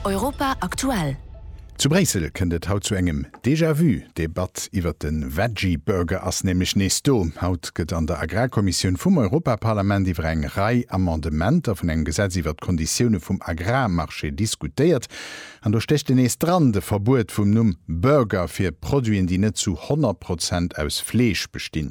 Europa aktuell. Zu Bréissel kënnt et haut zu engem Déjà-vu. D'Debatt iwwert de Veggie Burger ass nämlech nees do. Haut gëtt an der Agrarkommissioun vum Europaparlament iwwer eng Rei Amendementer vun engem Gesetz iwwert d'Konditioune vum Agrarmarché diskutéiert. An do stécht en nees dran, de Verbuet vum Numm Burger fir Produiten, déi net zu 100 Prozent aus Fleesch bestinn.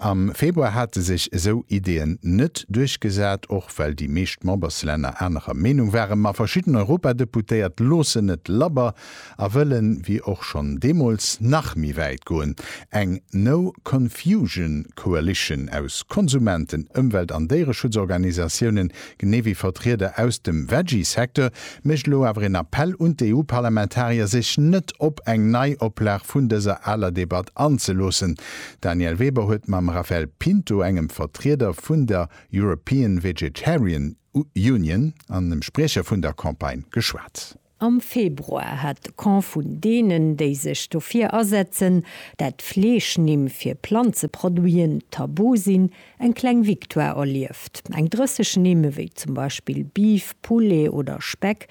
Am Februar hate sech esou Ideeën net duerchgesat, och well déi meescht Memberslänner anerer Meenung waren. Ma verschidden Europadeputéiert loossen net labber a wëllen, wéi och schonn deemools, nach méi wäit goen. Eng No Confusion Coalition aus Konsumenten, Ëmwelt an Déiereschutzorganisatiounen genee wéi Vertrieder aus dem Veggie-Secteur, mécht elo awer een Appell un d'EU-Parlamentarier, sech net op eng Neioplag vun dëser aler Debatt anzeloossen. D'Danièle Weber huet mam Raphaël Pinto, engem Vertrieder vun der European Vegetarian Union an dem Spriecher vun der Campagne, geschwat. Am Februar hat de Camp vun deenen, déi sech dofir asetzen, dat Fleeschnimm fir Planzeproduiten tabu sinn, eng kleng Victoire erlieft. Eng 30 Nimm, ewéi zum Beispill Beef, Poulet oder Speck,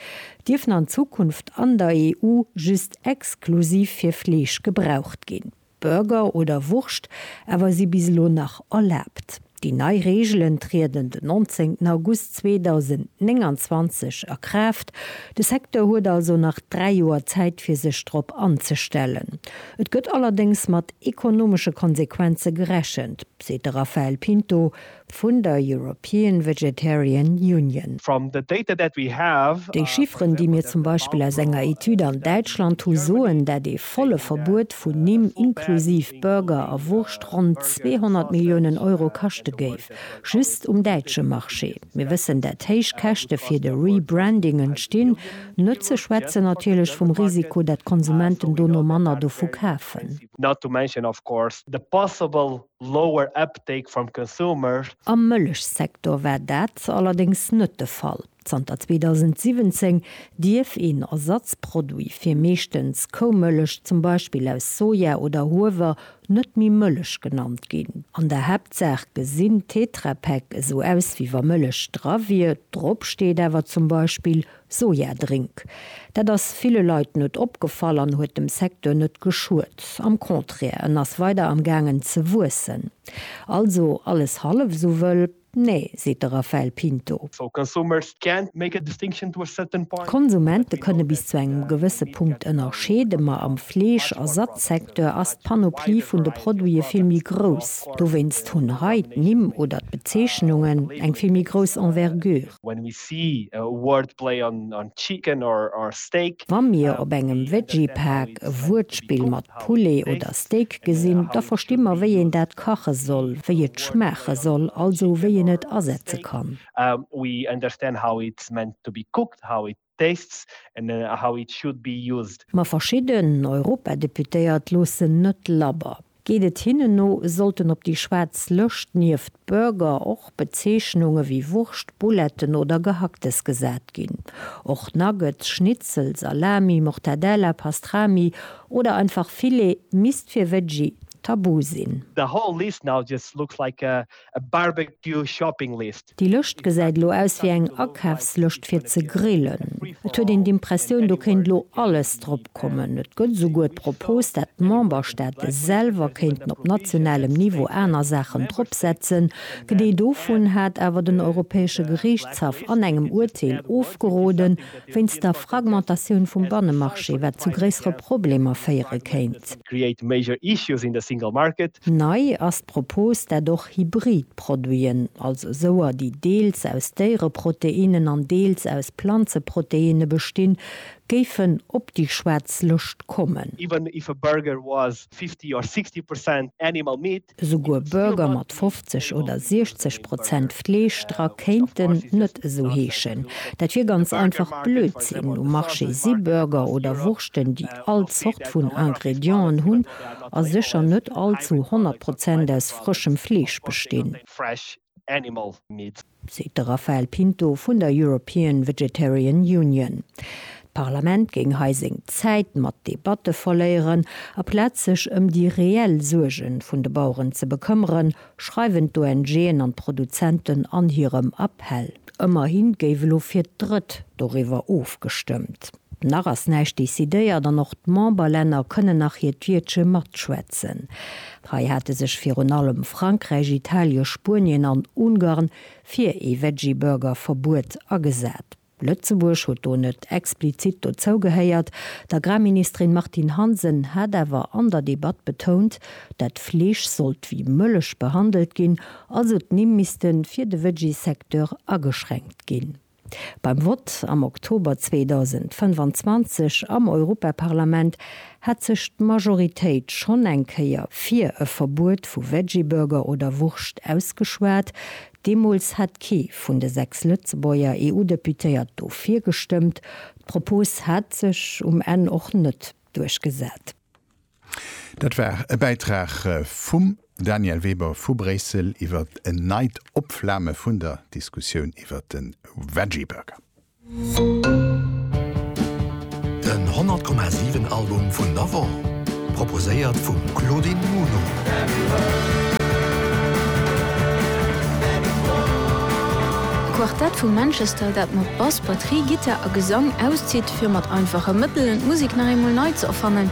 dierfen an Zukunft an der EU just exklusiv fir Fleesch gebraucht ginn. Burger oder Wurscht awer si bis elo nach erlaabt. Déi nei Reegelen trieden den 19 August 2029 a Kraaft. De Secteur huet also nach dräi Joer Zäit fir sech drop anzestellen. Et gëtt allerdéngs mat ekonomesche Konsequenze gerechent, seet de Raphael Pinto, vun der European Vegetarian Union. Déi Chifferen, déi mir zum Beispill aus enger Etüd an Däitschland hu soen, dat ee volle Verbuet vun Nimm, inklusiv Burger a Wurscht, ronn 200 Milliounen Euro kaschte géif, just um däitsche Marché. Mir wëssen, dat héich Käschte fir de Rebranding entstinn, net ze schwätzen natierlech vum Risiko, dat d'Konsumenten dono manner dovu kafen. lower uptake from consumers. Am Mëllechsektor war dat allerdéngs net de Fall. Zanter 2017 dierf een Ersatzproduit fir meeschtens Koumëllech, zum Beispill aus Soja oder Huewer, net méi Mëllech genannt ginn. An der Haaptsaach gesinn Tetra Pak esou aus wéi wa Mëllech dra wier, drop steet awer zum Beispill Sojadrink. Dat ass ville Leit net opgefall an huet dem Secteur net geschuet. Am Contraire, en ass weider am gaangen ze wuessen. Also alles hallef esou wëll? Nee, seet de Raphael Pinto. D'Konsumente kënne bis zu engem gewësse Punkt ënnerscheeden, ma am Fleesch a Satzsecteur ass d'Panoplie vun de Produite vill méi grouss. Dowéinst hunn hei d'Nimm oder d'Bezeechnungen eng vill méi grouss Envergure. When we see a wordplay on on chicken or or steak. Wa mir op engem Veggie-Paak e Wuertspill mat Poulet oder Steak gesinn, da versti mer, wéi een dat kache soll, wéi et schmaache soll, also wéi een et asetze kann. We understand how it's meant to be cooked, how it tastes and how it should be used. Ma verschidden Europadeputéiert loossen net labber. Geet et hinnen no, sollten op déi schwaarz Lëscht nieft Burger och Bezeechnunge wéi Wurscht, Bouletten oder Gehacktes gesat ginn. Och Nuggets, Schnitzel, Salami, Mortadella, Pastrami oder einfach Filet misst fir Veggie tabu sinn. The whole list now just looks like a a barbecue shopping list. Déi Lëscht gesäit elo aus wéi eng Akafslëscht fir ze grillen. Et huet een d'Impressioun, do kéint elo alles drop kommen. Et gëtt esouguer d'Propos, dat d'Memberstaate selwer kéinten op nationalem Niveau aner Saachen drop setzen. D'Idee dovun hat awer den Europäesche Geriichtshaff an engem Urteel ofgeroden. wéinst der Fragmentatioun vum Bannemarché, wat zu gréissere Problemer féiere kéint. Nei ass d'Propos, dat och hybrid Produiten, also souer, déi deels aus Déiereproteinnen an deels aus Planzeproteinne bestinn, géifen op déi schwaarz Lëscht kommen. 50 or 60 percent animal meat. Esouguer Burger mat 50 oder 60 Prozent Fleesch dra kéinten net esou heeschen. Dat wier ganz einfach Blödsinn. Um Marché si Burger oder Wurschten, déi all Zort vun Ingredienten hunn a sécher net all zu 100 Prozent aus frëschem Fleesch bestinn. Animal Meat. Seet de Rafael Pinto vun der European Vegetarian Union. D'Parlament géing hei seng Zäit mat Debatte verléieren, aplaz sech ëm déi reell Suerge vun de Baueren ze bekëmmeren, schreiwen d'ONGen an d'Produzenten an hirem Appell. Ëmmerhi géif elo fir d'Drëtt doriwwer ofgestëmmt. Nach ass näischt decidéiert an och d'Memberlänner kënnen nach hiert Wiertche matschwätzen. Hei hate sech virun allem Frankräich, Italien, Spuenien an Ungarn fir ee Veggieburger-Verbuet agesat. Lëtzebuerg huet do net explizit dozou gehéiert. D'Agrarministerin Martine Hansen hat awer an der Debatt betount, dat Fleesch sollt wéi Mëllech behandelt ginn, also d'Nimm misste fir de Veggie-Secteur ageschränkt ginn. Beim Vott am Oktober 2025 am Europaparlament hat sech d'Majoritéit schonn eng Kéier fir e Verbuet vu Veggieburger oder Wurscht ausgeschwat. Deemools hat kee vun de sechs Lëtzebuerger EU-Deputéiert dofir gestëmmt. D'Propos hat sech um Enn och net duerchgesat. Dat war e Bäitrag vum Daniel Weber vu Bréissel iwwer en neit Opflame vun der Diskussioun iwwer de Veggie Burger. Den 100,7 Album vun der Woch, proposéiert vum Claudine Muno. D'Quartett vu Manchester, dat mat Bass, Batterie, Gittar a Gesang auszitt, fir mat einfache Mëttelen d'Musek nach eemol nei ze erfannen.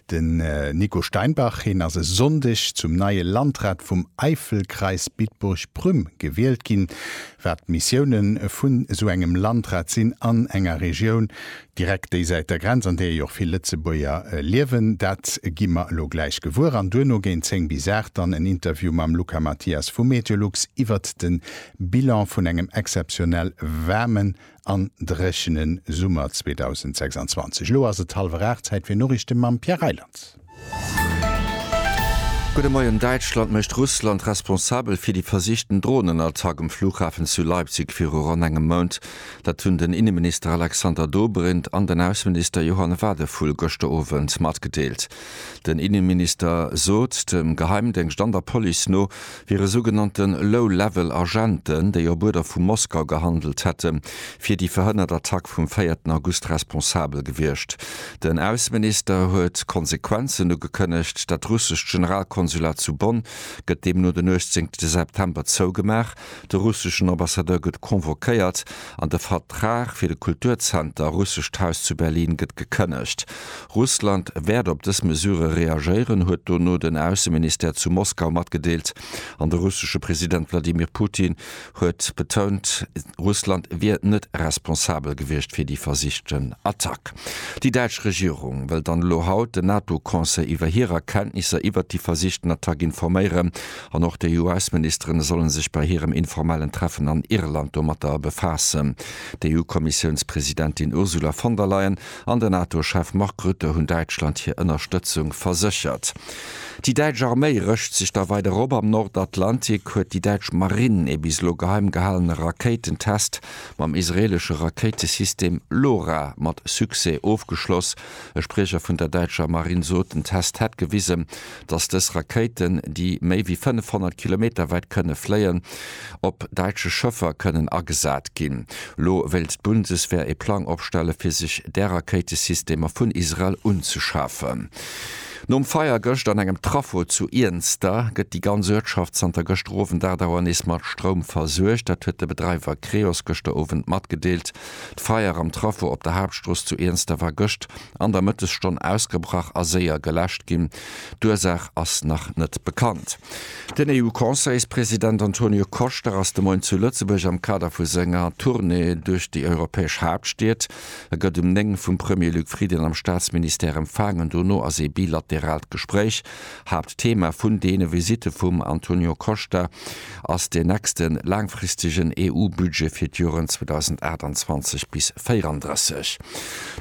Den Nico Steinbach, heen ass e Sonndeg zum neie Landrat vum Eifelkreis Bitburg-Prüm gewielt ginn. Wat d'Missiounen vun esou engem Landrat sinn an enger Regioun direkt déisäit der Grenz, an deeër jo och vill Lëtzebuerger liewen, dat gi mer elo gläich gewuer. An duerno géint 10 bis 8 dann en Interview mam Luca Mathias vu Meteolux iwwert den Bilan vun engem exzeptionell waarmen an dréchene Summer 2026. Elo ass et hallwer aacht, Zäit fir Noriichte mam Pierre Reyland. Gudde Moien, Däitschland mécht Russland responsabel fir déi versichten Dronenattack um Flughafen zu Leipzig viru ronn engem Mount. Dat hunn den Inneminister Alexander Dobrindt an den Ausseminister Johann Wadephul gëschter Owend matgedeelt. Den Inneminister sot, dem Geheimdéngscht an der Police no wiere sougenannte Low-Level Agenten, déi op Uerder vu Moskau gehandelt hätte fir déi verhënnert Attack vum véierten August responsabel gewiescht. Den Ausseminister huet Konsequenzen ugekënnegt. Dat russescht Generalkonsulat zu Bonn gëtt deemno den 18 September zougemaach. De russeschen Ambassadeur gëtt convoquéiert. An de Vertrag fir de Kulturzenter Russescht Haus zu Berlin gëtt gekënnegt. Russland wäert op dës Mesure reagéieren, huet dono den Ausseministère zu Moskau matgedeelt. An de russesche President Wladimir Putin huet betount, Russland wier net responsabel gewiescht fir déi versichten Attack. Déi däitsch Regierung wëll dann elo haut den NATO-Conseil iwwer hirer Kenntnisser iwwert déi versichten Attack informéieren. An och d'EU-Ausseministeren sollen sech bei hirem informellen Treffen an Irland domatter befaassen. D'EU-Kommissiounspresidentin Ursula von der Leyen an den NATO-Chef Mark Rutte hunn Däitschland hir Ënnerstëtzung verséchert. Déi däitsch Arméi rëscht sech da weider op. Am Nordatlantik huet déi däitsch Marinn ee bis elo geheim gehalene Rakéitentest mam israeelesche Rakéitesystem LORA mat Succès ofgeschloss. E Spriecher vun der däitscher Marinn sot, den Test hätt gewisen, dass dës Rakéiten, déi méi wéi 500 Kilometer wäit kënne fléien, op däitsche Schëffer kënnen agesat ginn. Elo wéilt d'Bundeswehr ee Plang opstelle fir sech där Rakéitesystemer vun Israel unzeschafen. Nom Feier gëscht an engem Traffo zu Iernster gëtt déi ganz Uertschaft zanter gëschter Owend 8 Auer nees mat Stroum versuergt. Dat huet de Bedreiwer Creos gëschter Owend matgedeelt. D'Feier am Traffo op der Haaptstrooss zu Iernster war gëscht an der Mëttesstonn ausgebrach a séier geläscht ginn. D'Ursaach ass nach net bekannt. Den EU-Conseilspresident Antonio Costa ass de Moien zu Lëtzebuerg am Kader vu senger Tournée duerch déi europäesch Haaptstied. E gëtt um 9 vum Premier Luc Frieden am Staatsministère empfaangen. Dono ass ee bilateraalt Gespréich Haaptthema vun deene Visitte vum Antonio Costa ass deen nächste laangfristegen EU-Budget fir d'Joren 2028 bis 34.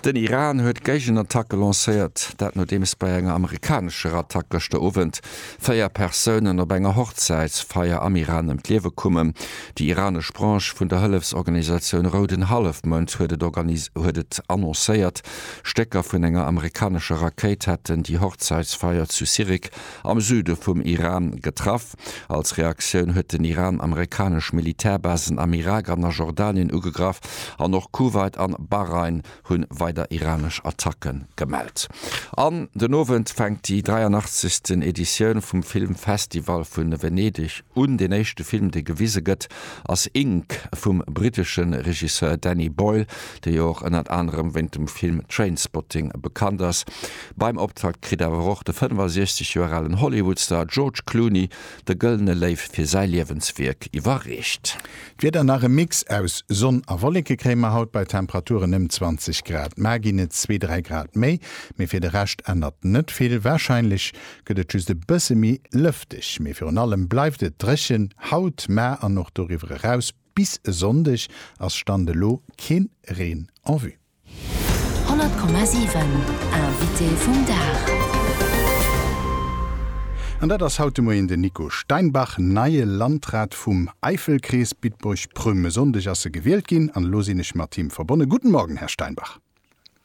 Den Iran huet d'Géigenattacke lancéiert, dat nodeems bei enger amerikanescher Attack gëschter Owend véier Persounen op enger Hochzäitsfeier am Iran ëm d'Liewe kommen. Déi iranesch Branche vun der Hëllefsorganisatioun Rouden Hallefmound huet et annoncéiert, Stécker vun enger amerikanescher Rakéit hätten déi Hochzäitsfeier zu Sirik am Süde vum Iran getraff. Als Reaktioun huet den Iran amerikanesch Militärbasen am Irak an a Jordanien ugegraff an och Kuwait an Bahrain hu weider iranesch Attacke gemellt. An den Owend fänkt déi 83. Editioun vum Filmfestival vu Venedeg un. Deen éischte Film, dee gewise gëtt, ass Ink vum brittesche Regisseur Danny Boyle. dee jo och ënnert anerem wéint dem Film Trainspotting bekannt ass. Beim Optakt kritt awer och de 65 Joer alen Hollywoodstar George Clooney de Gëllene Léiw fir säi Liewenswierk iwwerreecht. D'Wieder, Nach e Mix aus Sonn a Wolleke kréie mer haut bei Temperaturen ëm 20 Grad. Mar ginn et zwee, dräi Grad méi, mee fir de Rescht ännert net vill. Warscheinlech gëtt et just e bësse méi lëfteg, mee virun allem bleift et dréchen haut, mar an och doriwwer eraus. Bis e Sonndeg ass Stand elo keen Reen en vue. 100,7 Invité vum Dag. An dat ass haut de Moien den Nico Steinbach, neie Landrat vum Äifelkrees Bitburg-Prüm. E Sonndeg ass e gewielt ginn an elo sinn ech mat him verbonne. Guten Morgen, Här Steinbach.